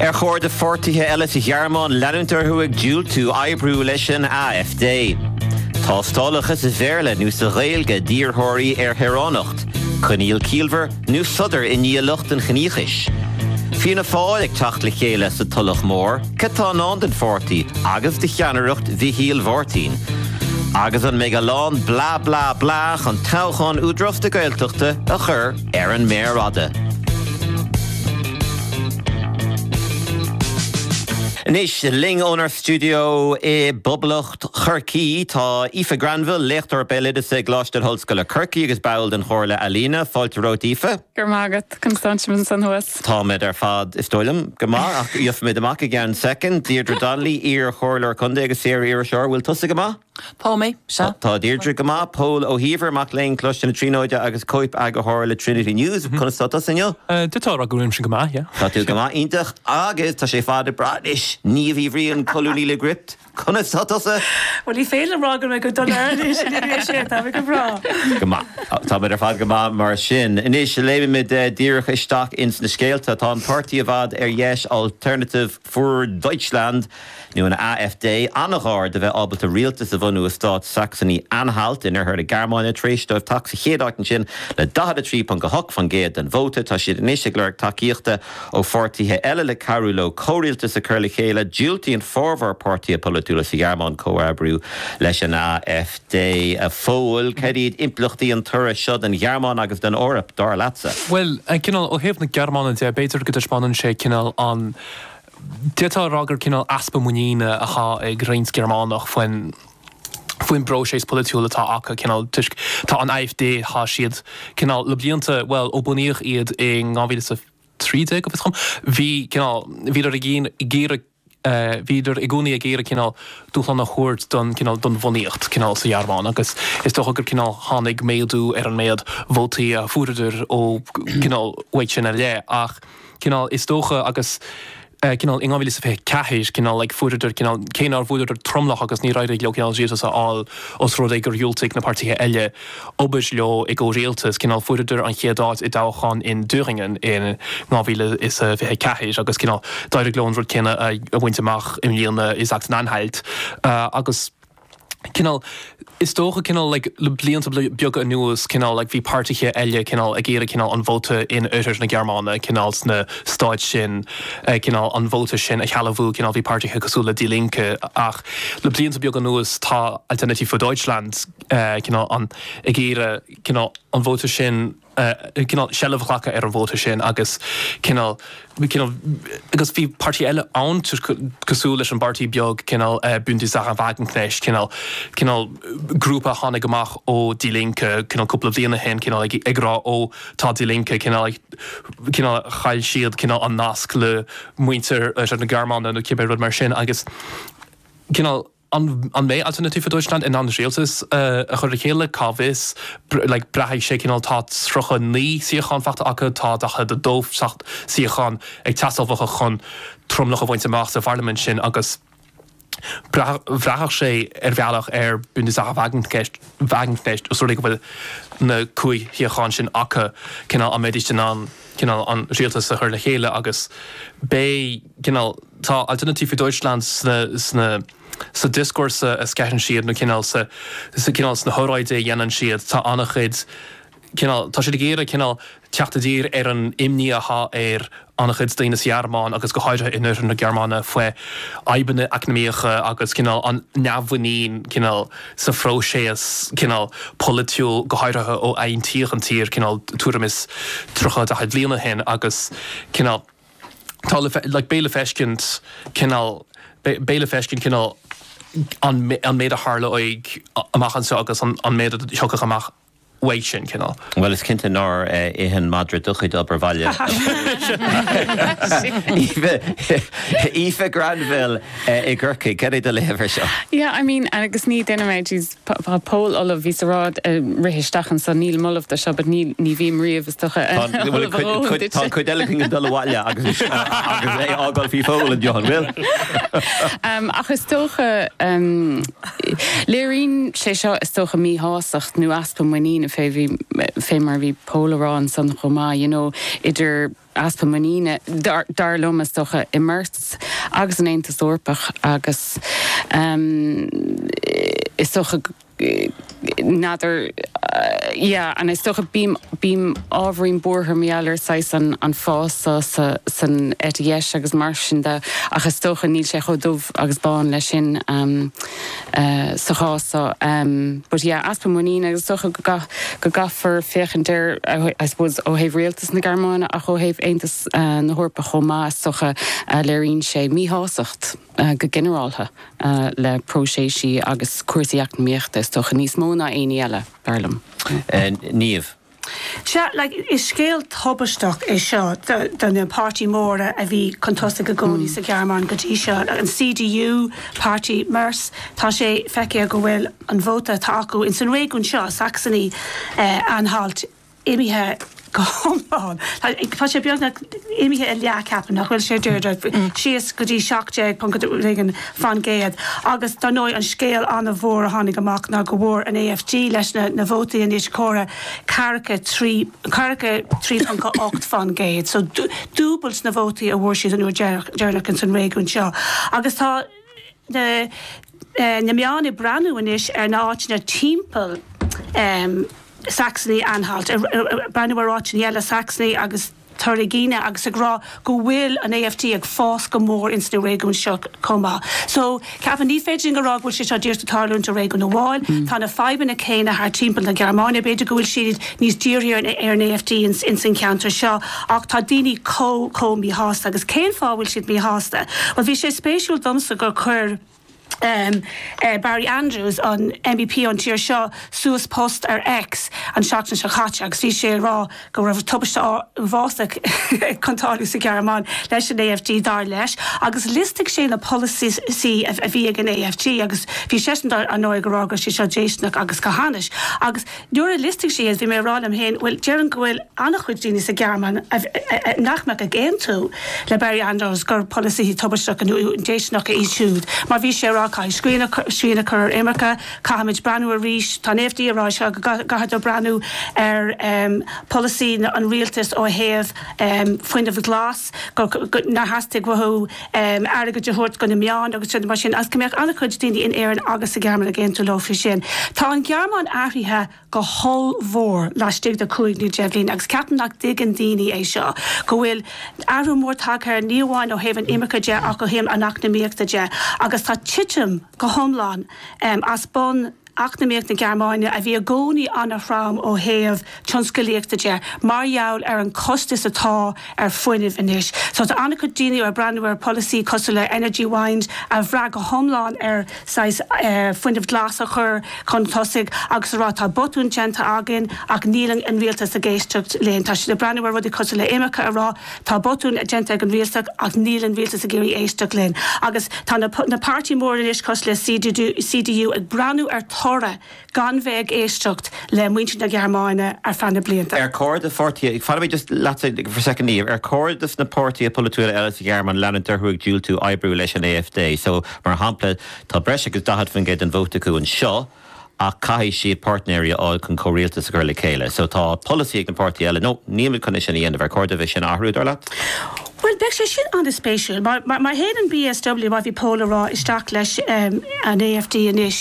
Ar chóir do pháirtithe eile sa Ghearmáin leanúint orthu ag diúltú oibriú leis an AfD? Tástálacha sa Bhéarla nó sa Ghaeilge d'iarrthóirí ar shaoránacht, coinníoll ciallmhar nó sodar i ndiaidh lucht an chiníochais? Fianna Fáil ag teacht le chéile sa Tulach Mhór, cad tá i ndán don pháirtí agus do cheannaireacht Mhichíl Mháirtín? Agus an mbeidh a lán 'blah blah blah' chun toghchán Údarás na Gaeltachta a chur ar an méar fhada. Anois linn ónár stiúideo i bPoblacht Chorcaí tá Aoife Granville, léachtóir béaloideasa i gColáiste na hOllscoile Corcaí agus ball den Chomhairle Ealaíne. Fáilte romhat, Aoife. Go raibh maith agat. Conas tánn sibh ansan thuas? Táimid ar fad, is dóigh liom, go maith, ach gheobhaimid amach i gceann soicind. Deirdre Donnelly, iar-Chomhairleoir Contae agus saor-iriseoir, bhfuil tusa go maith? Tá mé, sea. Tá Deirdre go maith. Pól Ó hÍomhair, mac léinn Coláiste na Tríonóide agus cóipeagarthóir le Trinity News. Conas tá tusa inniu? Tá tá rud go bhfuilimse go maith, yeah. Tá tú go maith, iontach. Agus tá sé ar fad go breá anois. Niamh Uí Bhriain, colúnaí le Gript. Conas tá tusa? Bhuel, ní féidir liom rá go raibh mé go dona anois, ní raibh sé, tá mé go breá. Go maith. Tá- Tá muid ar fad go maith mar sin. Anois léimfimid eh, díreach isteach ins na scéalta. Tá an páirtí i bhfad ar dheis Alternative für Deutschland, nó an AfD, an-ghar do bheith ábalta rialtas a bhunú i stát Saxony-Anhalt in oirthear na Gearmáine tar éis dóibh teacht sa chéad áit ansin le 43.8% den vóta. Tá siad anois ag lorg tacaíochta ó pháirtithe eile le cabhrú leo comhrialtas a chur le chéile. Diúltaíonn formhór páirtithe polaitiúla sa Ghearmáin comhoibriú leis an AfD. A Phóil, cad iad impleachtaí an toradh seo don Ghearmáin agus don Eoraip, dar leatsa? Bhuel, cineál, ó thaobh na Gearmáine de, b'fhéidir go dtaispeánann sé cineál an, d'fhéadfá a rá gur cineál easpa muiníne atá ag roinnt Gearmánach faoin, faoin bpróiseas polaitiúil atá acu, cineál, toisc, tá an AfD, tá siad, cineál, le blianta, bhuel, ó bunaíodh iad in dhá mhíle is a trí déag, go bhfios dhom, bhí, cineál, bhíodar i gcónaí, ag iarraidh, bhíodar i gcónaí ag iarraidh cineál dúshlán a thabhairt don cineál don bhunaíocht cineál sa Ghearmáin agus is dócha gur cineál tháinig méadú ar an méid vótaí a fuaireadar ó cineál uaidh sin i leith ach cineál is dócha agus cineál in 2024 cineál like fuaireadar cineál cé nár bhfuaireadar tromlach agus níor éirigh leo cineál rialtas a fháil os rud é gur dhiúltaigh na páirtithe eile obair leo i gcomhrialtas, cineál fuaireadar an chéad áit i dtoghchán in Thüringen in 2024 agus cineál d'éirigh leo an rud céanna a bhaint amach i mbliana i Sachsen-Anhalt agus cineál is dócha cineál like le blianta beaga anuas cineál like bhí páirtithe eile cineál ag iarraidh cineál an vóta in oirthear na Gearmáine cineál sna stáit sin cineál an vóta sin a shealbhú cineál bhí páirtithe cosúil le Die Linke ach le blianta beaga anuas tá Alternative für Deutschland cineál an, ag iarraidh cineál an vóta sin, cineál seilbh a ghlacadh ar an vóta sin agus cineál, cineál, agus bhí páirtí eile ann cosúil leis an bpáirtí beag cineál Bündnis Sahra Wagenknecht, cineál, cineál grúpa a tháinig amach ó Die Linke cineál cúpla bliain ó shin cineál ag rá ó tá Die Linke cineál, cineál chaill siad cineál an nasc le muintir oirthear na Gearmáine nó cibé rud mar sin agus cineál. An mbeidh Alternative für Deutschland in ann rialtas a chur le chéile? Cá bhfios. Braithfidh sé cineál. Tá 39 suíochán faighte acu, tá 42 suíochán ag teastáil uathu chun tromlach a bhaint amach sa pharlaimint sin agus bhraithfeadh sé ar bhealach ar Bündnis Sahra Wagenknecht os rud é go bhfuil na cúig shuíochán sin acu, cineál an mbeidíst in ann cineál an rialtas a chur le chéile agus beidh cineál. Tá Alternative für Deutschland sna, sna, sa dioscúrsa a sceitheann siad nó cineál sa cineál sna hóráidí a dhéanann siad tá an-chuid cineál tá siad ag iarraidh cineál teacht i dtír ar an imní atá ar an-chuid daoine sa Ghearmáin agus go háirithe in oirthear na Gearmáine faoi fhadhbanna eacnamaíocha agus cineál an neamh-mhuinín cineál sa phróiseas cineál polaitiúil go háirithe ó aontaíodh an tír cineál tuairim is 30 40 bliain ó shin agus cineál Tá le, beidh le feiscint cineál beidh le feiscint cineál an an méid a tharlóidh amach anseo agus an méid a thiocfaidh amach uaidh sin cineál. Bhuel is cinnte nár ith an madra do chuid obair baile. Aoife Granville i gCorcaigh, cad é do léamh ar seo? Yeah, I mean agus ní duine mé, jeez. Tá Pól ullamh, bhí sé á rá ag rith isteach anso, nílim ullamh dó seo but ní ní bhím riamh, is dócha, ullamh a dhóthain duit. Tá an chuid eile ag dul abhaile agus agus é a fhágáil faoi Phól an deoch, an bhfuil? Ach is dócha, léiríonn sé seo is dócha míshásacht nó easpa muiníne fé mar a bhí Pól á rá ansan chomh maith, you know, idir, easpa muiníne, dar liom, is dócha, i Merz agus an Aontas Eorpach agus is dócha n'fheadar yeah agus is dócha bím bím ábhairín buartha mar gheall ar saghas an an fás so sa san eite dheis agus mar sin de ach is dócha níl sé chomh dubh agus bán leis sin um, sa chás seo but yeah easpa muiníne agus is dócha go gcaithfear féachaint air I suppose ó thaobh rialtas na Gearmáine ach ó thaobh Aontas na hEorpa chomh maith is dócha léiríonn sé míshásacht go ginearáltha le próiséisí agus cúrsaí eacnamaíochta is dócha níos mó ná aon ní eile dar liom. Niamh. Sea, is scéal tubaisteach é seo do na páirtí móra a bhí chun tosaigh i gcónaí sa Ghearmáin go dtí seo, an CDU, páirtí Merz. Tá sé feicthe go bhfuil an vóta atá acu in san réigiún seo, Saxony-Anhalt, imithe go hiomlán, tá sé beagnach imithe i leath ceapaim, nach bhfuil sé, Deirdre, síos go dtí seacht déag ponc a rud éigin. faoin gcéad. Agus dar ndóigh an scéal an-mhór a tháinig amach ná go bhfuair an AfD, leis na na vótaí anois comhairthe, ceathracha trí, ceathracha trí ponc a hocht faoin gcéad, so dúbailt na vótaí a bhfuair siad an uair deireanach ins an réigiún seo. Agus tá na na meáin ag breathnú anois ar na áiteanna timpeall Saxony-Anhalt, ag breathnú ar áiteanna eile Saxony agus. Thüringen agus ag rá go bhfuil an AfD ag fás go mór ins na réigiúin seo chomh maith. So, cheapfainn, ní féidir linn a rá go bhfuil sé seo díreach ag tarlúint i réigiún amháin. Tá na fadhbanna céanna thart timpeall na Gearmáine. B'fhéidir go bhfuil siad níos dírithe ar an AfD ins ins an cheantar seo ach tá daoine chomh chomh míshásta. Agus cén fáth a bhfuil siad míshásta? Bhuel, bhí sé spéisiúil domsa gur chuir. Barry Andrews, an MEP ón tír seo, suas post ar X an tseachtain seo caite agus bhí sé ag rá go raibh tubaiste uafásach ag tarlú sa Ghearmáin leis an AfD, dar leis, agus liostaigh sé na polasaithe a bhí ag an AfD agus bhí seisean, ar ndóigh, ag rá go raibh siad seo déistineach agus go hainnis. Nuair a liostaigh sé iad bhí mé ag rá liom féin, bhuel déarfainn go bhfuil an-chuid daoine sa Ghearmáin nach mbeadh ag aontú le Barry Andrews gur polasaithe tubaisteacha nó déistineacha iad siúd mar bhí sé ag rá caithfidh srian a chur ar imirce, caithfimid breathnú arís, tá an AfD ag rá seo, go gcaithfidh tú breathnú ar pholasaí an rialtais ó thaobh fuinnimh glas, nár theastaigh uathu. airgead a thabhairt do na meáin agus rudaí mar sin agus go mbeadh an-chuid daoine in Éirinn agus sa Ghearmáin ag aontú leo faoi sin. Tá an Ghearmáin athraithe go hollmhór laistigh de chúig nó deich bhliain agus ceapaim nach dtuigeann daoine é seo, go bhfuil athrú mór tagtha air, ní amháin ó thaobh an imirce de ach ó thaobh an eacnamaíochta de agus tá titim go hiomlán as bun. Eacnamaíocht na Gearmáine, a bhí i gcónaí an-trom ó thaobh tionscalaíochta de mar gheall ar an costas atá ar fuinnimh anois. So tá an-chuid daoine ag breathnú ar pholasaí cosúil le Energiewende a bhrath go hiomlán ar saghas fuinneamh glas a chur chun tosaigh agus ag rá tá botún déanta againn ach níl an rialtas ag éisteacht linn. Tá siad ag breathnú ar rudaí cosúil le imirce ag rá. Tá botún déanta ag an Rialtas ach níl an Rialtas ag iarraidh éisteacht linn. Agus tá na páirtí móra anois cosúil le CDU ag breathnú ar toradh gan bheith ag éisteacht le muintir na Gearmáine ar feadh na blianta. Ar chóir do pháirtí, fanfaimid just leatsa for a second Niamh, ar chóir dos na páirtithe polaitiúla eile sa Ghearmáin leanúint orthu ag diúltú oibriú leis an AfD? So, mar shampla, tá breis agus 40% den vóta acu anseo, ach caithfidh siad páirtnéirí a fháil chun comhrialtas a chur le chéile, so tá polasaí ag na páirtithe eile, no, níl muid chun é sin a dhéanamh, ar chóir doibh é sin a athrú, dar leat? Bhuel, beidh sé sin an-spéisiúil, mar, mar, mar théann an BSW, mar bhí Pól ag rá, isteach leis an AfD anois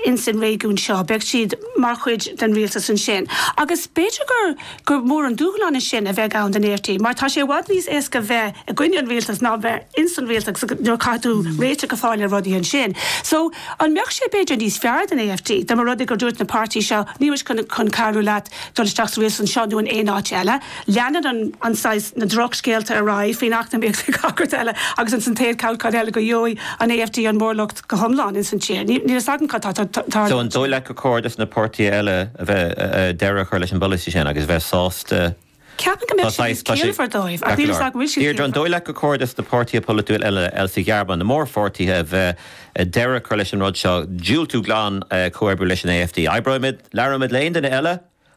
ins an réigiún seo, beidh siad mar chuid den rialtas ansin, agus b'fhéidir gur, gur mór an dúshlán é sin a bheidh ann don AfD mar tá sé i bhfad níos éasca bheith i gcoinne an rialtas ná bheith ins an rialtas nuair a chaithfidh tú réiteach a fháil ar rudaí ansin. So an mbeadh sé b'fhéidir níos fearr don AfD dá mba rud é gur dúirt na páirtithe seo níl muid chun cabhrú leat dul isteach sa rialtas anseo nó in aon áit eile. Leanann an an saghas na drochscéalta ar aghaidh faoin eacnamaíocht agus cad eile agus ansan cad eile go gheobhaidh an AfD an móramh go hiomlán ins an tír. Níl fhios agam cad tá. So an dóigh leat gur chóir dos na páirtithe eile a bheith deireadh a chur leis an bpolasaí sin agus bheith sásta Ceapaim go mbeadh sé níos ciallmhaire dóibh ach níl fhios agam an bhfuil sé ciallmhar. Deirdre, An dóigh leat gur chóir dos na páirtithe polaitiúla eile eile sa Ghearmáin, na mórpháirtithe, b'fhéidir deireadh a chur leis an rud seo, diúltú glan comhoibriú leis an AfD? Oibreoimid, labhróimid le haon duine eile?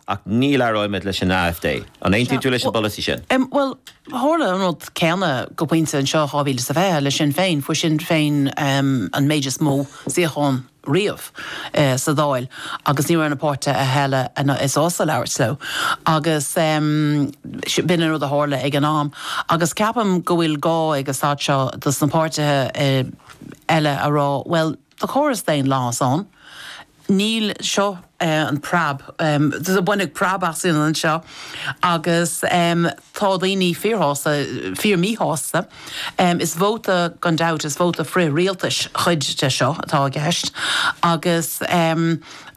Ach ní labhróimid leis an AFD. An aontaíonn tú leis an bpolasaí sin? Bhuel, tharla an rud céanna go pointe anseo in 2020 le Sinn Féin. Fuair Sinn Féin an méid is mó suíochán riamh sa Dáil agus ní raibh na páirtithe eile sásta labhairt leo. Agus b'in an rud a tharla ag an am. Agus ceapaim go bhfuil gá ag an staid seo dos na páirtithe eile a rá, bhuel, Tá córas daonlathais ann. Níl seo an preab. Baineadh preab asainn anseo agus tá daoine fíorshásta, fíormíshásta. Is vóta gan dabht, is vóta frith-rialtais chuid de seo atá i gceist agus.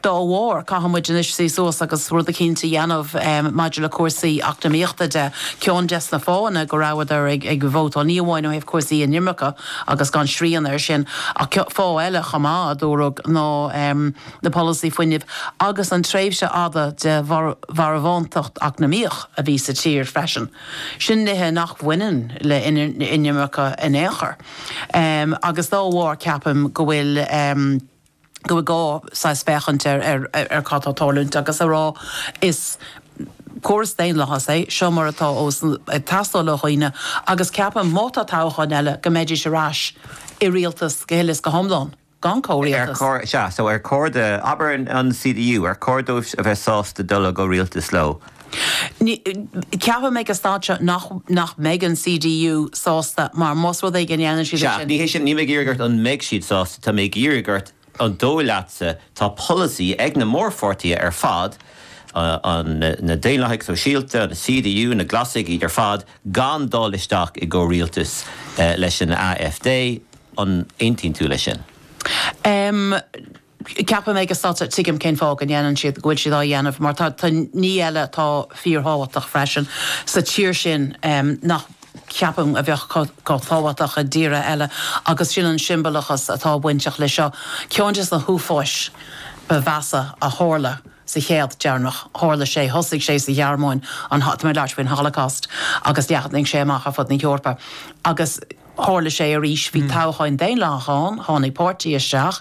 Dá bharr, caithfidh muid anois suí suas agus rud eicínt a dhéanamh maidir le cúrsaí eacnamaíochta de. Ceann des na fáthanna go rabhadar ag vótáil, ní amháin ó thaobh cúrsaí inimirce agus gan srian air sin, ach fáth eile chomh maith, a dúradh, ná na polasaí fuinnimh agus an tréimhse fhada de mharbhántacht eacnamaíoch a bhí sa tír freisin. Sin nithe nach mbaineann le inimirce in aon chor agus dá bharr ceapaim go bhfuil, go bhfuil gá saghas féachaint ar ar cad tá ag tarlúint agus a rá is córas daonlathais é seo má tá sé ag teastáil ó dhaoine agus ceapaim má tá toghchán eile go mbeidís ar ais i rialtas go huile is go hiomlán gan chomhrialtas. Ar chóir, sea, so ar chóir do, abair an CDU, ar chóir dóibh a bheith sásta dul i gcomhrialtas leo? Ceapaim ag an staid seo nach mbeidh an CDU sásta mar más rud é go ndéanann siad é sin. Sea, ní hé sin, níl mé ag iarraidh ort an mbeidh siad sásta, tá mé ag iarraidh ort an dóigh leatsa, tá polasaí ag na mórpháirtithe ar fad, na Daonlathaigh Shóisialta, an CDU, na Glasaigh, iad ar fad gan dul isteach i gcomhrialtas leis an AfD, an aontaíonn tú leis sin? Ceapaim ag an staid seo, tuigim cén fáth go ndéanann siad, go bhfuil siad á dhéanamh mar tá ní eile atá fíor thábhachtach freisin sa tír sin nach ceapaim a bheadh chomh tábhachtach i dtíortha eile agus sin an siombalachas atá bainteach le seo. Ceann des na h-uafáis ba mheasa a tharla sa chéad deireanach, tharla sé, thosaigh sé sa Ghearmáin, an, tá mé ag labhairt faoin Holocaust agus leathnaigh sé amach ar fud na hEorpa agus. Tharla sé arís, bhí toghchán daonlathach ann, tháinig páirtí isteach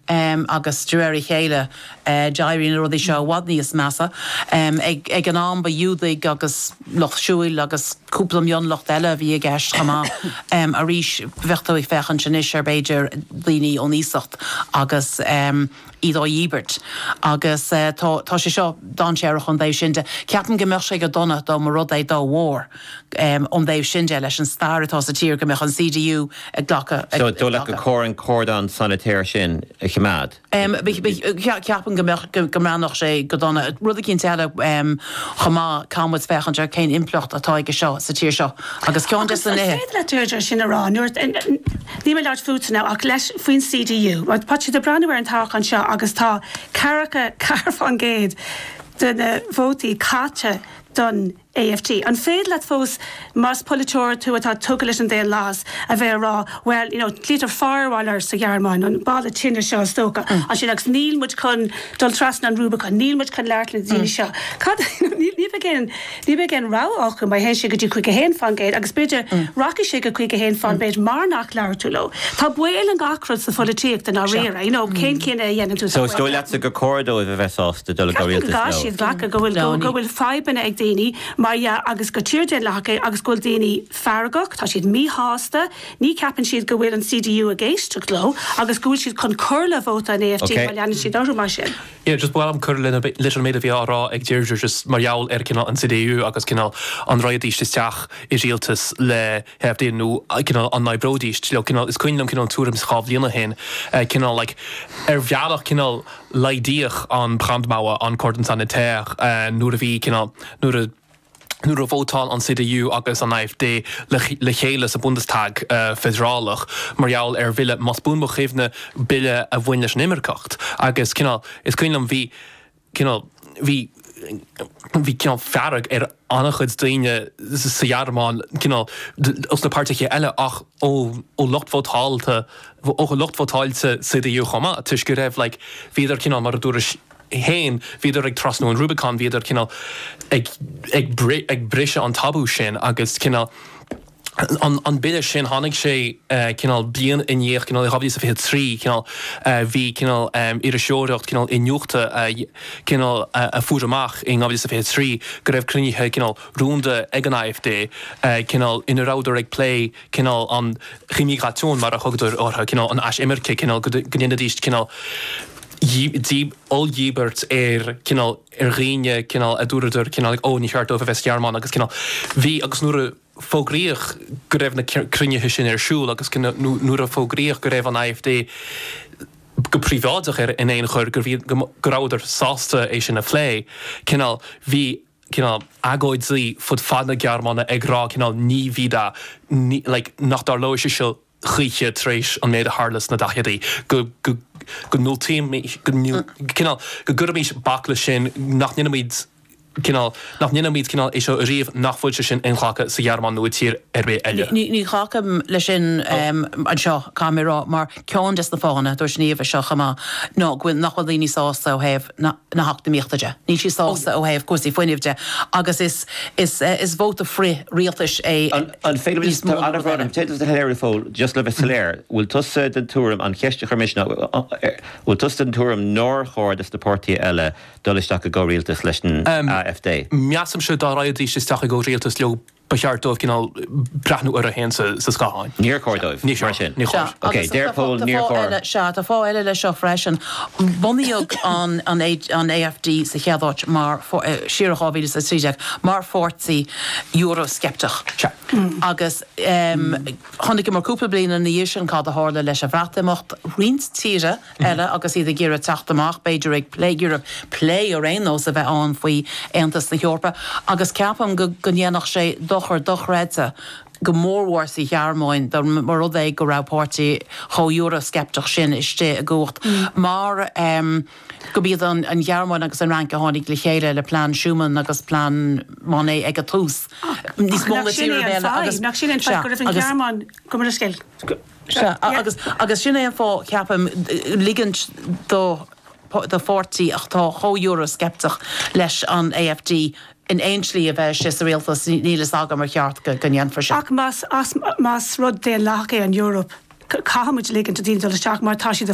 agus de réir a chéile d'éirigh na rudaí seo i bhfad níos measa. Ag an am ba Ghiúdaigh agus lucht siúil agus cúpla mionlucht eile a bhí i gceist chomh maith. Arís bheadh tú ag féachaint anois ar b'fhéidir daoine ón iasacht agus. iad á ndíbirt agus tá sé seo dainséarach ón dtaobh sin de. Ceapaim go mbeadh sé go dona dá mba rud é, dá bharr, ón dtaobh sin de, leis an stair atá sa tír, go mbeadh an CDU ag glacadh. Dul leat go comhair an cordon sanitaire sin a choimeád. Ceapaim go mbeadh, go mbreathnódh sé go dona. Rud eicínt eile chomh maith, caithfimid féachaint ar cén impleacht atá aige seo sa tír seo agus ceann des na nithe. Agus céard leat Deirdre sin a rá nuair. Níl mé ag labhairt fútsa now ach leis, faoin CDU. Tá siad ag breathnú ar an toghchán seo agus tá ceathracha ceathair faoin gcéad de na vótaí caite don AfD. An féidir leat fós, más polaiteoir tú atá tugtha leis an daonlathas, a bheith ag rá, bhuel, you know, glaoitear firewall air sa Ghearmáin, an balla tine seo is dócha, ansin agus níl muid chun dul trasna an Rubicon, níl muid chun labhairt le na daoine seo. Cad, ní bheidh aon, Ní bheidh aon rogha acu má théann siad go dtí caoga a haon faoin gcéad agus b'fhéidir rachaidh siad go caoga a haon faoin gcéad mar nach labhair tú leo. Tá baol i ngach rud sa pholaitíocht i ndáiríre, you know, cén cinneadh a dhéanann tú. So is dóigh leatsa gur chóir dóibh a bheith sásta dul i gcomhrialtas leo? Ceapaim go gcaithfidh siad glacadh go bhfuil, go bhfuil fadhbanna ag daoine mar dhea agus gur tír daonlathach í agus go bhfuil daoine feargach, tá siad míshásta, ní ceapann siad go bhfuil an CDU ag éisteacht leo agus go bhfuil siad chun cur le vóta an AfD má leanann siad orthu mar sin. Yeah just ba mhaith liom cur leis an méid a bhí á rá ag Deirdre just mar gheall ar cineál an CDU agus cineál an rachaidíst isteach i rialtas le hAfD nó cineál an n-oibreoidíst leo cineál is cuimhin liom cineál an tuairim dhá bhliain ó shin cineál like ar bhealach cineál laghdaíodh an Brandmauer an cordon sanitaire nuair a bhí cineál nuair a nuair a vótáil an CDU agus an AfD le chéile sa Bundestag feidearálach mar gheall ar bhille, más buan mo chuimhne, bille a bhain leis an imirceacht agus cineál, is cuimhin liom, bhí cineál, bhí, bhí cineál fearg ar an-chuid daoine sa Ghearmáin cineál, ós na páirtithe eile ach ó lucht vótáilte, ó lucht vótáilte CDU chomh maith toisc go raibh like, bhíodar cineál mar a dúirt. 1, bhíodar ag trasnú an Rubicon, bhíodar cineál ag, ag, ag briseadh an tabú sin agus cineál an, an bille sin tháinig sé eh, cineál bliain i ndiaidh cineál 2023 cineál eh, bhí cineál em, iriseoireacht cineál iniúchta a cineál a, a fuair amach in 2023 go raibh cruinnithe cineál rúnda ag an AfD eh, cineál ina rabhadar ag plé cineál an immigration mar a thugtar orthu cineál an aisimirce cineál go, go ndéanfaidís cineál oll-dhíbirt ar cineál, ar dhaoine cineál a dúradar cineál ó ní ceart dóibh a bheith sa Ghearmáin agus cineál bhí agus nuair a fógraíodh go raibh na cruinnithe sin ar siúl agus cineál nuair a fógraíodh go raibh an AfD go príobháideach ar, in aon chor, go, go rabhadar sásta é sin a phlé cineál bhí cineál agóidí fud fad na Gearmáine ag rá cineál ní bhí dá ní like nach dtarlóidh sé seo choíche tar éis an méid a tharla sna daichidí, go, go ndiúltaimid go cineál go gcuirfimis bac le sin, nach ndéanfaimid cineál, nach ndéanfaimid cineál é seo ariamh, nach bhfuil sé sin inghlactha sa Ghearmáin nó i tír ar bith eile. Ní ghlacaim le sin anseo, caithfidh mé a rá, mar ceann des na fáthanna, dúirt Niamh é seo chomh maith, ná go bhfuil nach bhfuil daoine sásta ó thaobh na. na heacnamaíochta de. Níl siad sásta ó thaobh cúrsaí fuinnimh de agus is vóta frith rialtais é níos mó ná rud eile. Téann tú thar lear. Fan go fóill, just le bheith soiléir, bhfuil tusa den tuairim, an cheist a chuir mise ná, bhfuil tusa den tuairim nár chóir do na páirtithe eile dul isteach i gcomhrialtas leis an AfD? Measaimse dá raghaidís isteach i gcomhrialtas leo Ba cheart dóibh cineál breathnú orthu féin sa scáthán. Níor chóir dóibh, mar sin. Níor chóir. Sea, agus tá fáth eile, sea, tá fáth eile leis seo freisin. Bunaíodh an AfD sa chéad áit mar, siar i 2013, mar pháirtí Euro-sceipteach. Sea. Agus chonaiceamar cúpla bliain ina dhiaidh sin cad a tharla leis an Bhreatimeacht. Roinnt tíortha eile agus iad ag iarraidh teacht amach, b'fhéidir ag, ag iarraidh plé ar aon nós a bheith ann faoi Aontas na hEorpa agus ceapaim go ndéanfadh sé dochar dochreidte go mórmhór sa Ghearmáin dá mba rud é go raibh páirtí chomh Euroscepteach sin istigh i gcumhacht mar gurb iad an Ghearmáin agus an Fhrainc a tháinig le chéile le plean Schuman agus plean Monnet ag an tús. Ach nach sin é an fáth, nach sin é an fáth go raibh an Ghearmáin, go Sea, agus agus sin é an fáth, ceapaim, ligint do do pháirtí atá chomh Euro-sceipteach leis an AfD in aon slí a bheith istigh sa rialtas, níl fhios agam ar cheart go ndéanfaí sin. Ach más rud daonlathach é an Eoraip, caithfimid ligint do dhaoine dul isteach mar tá siad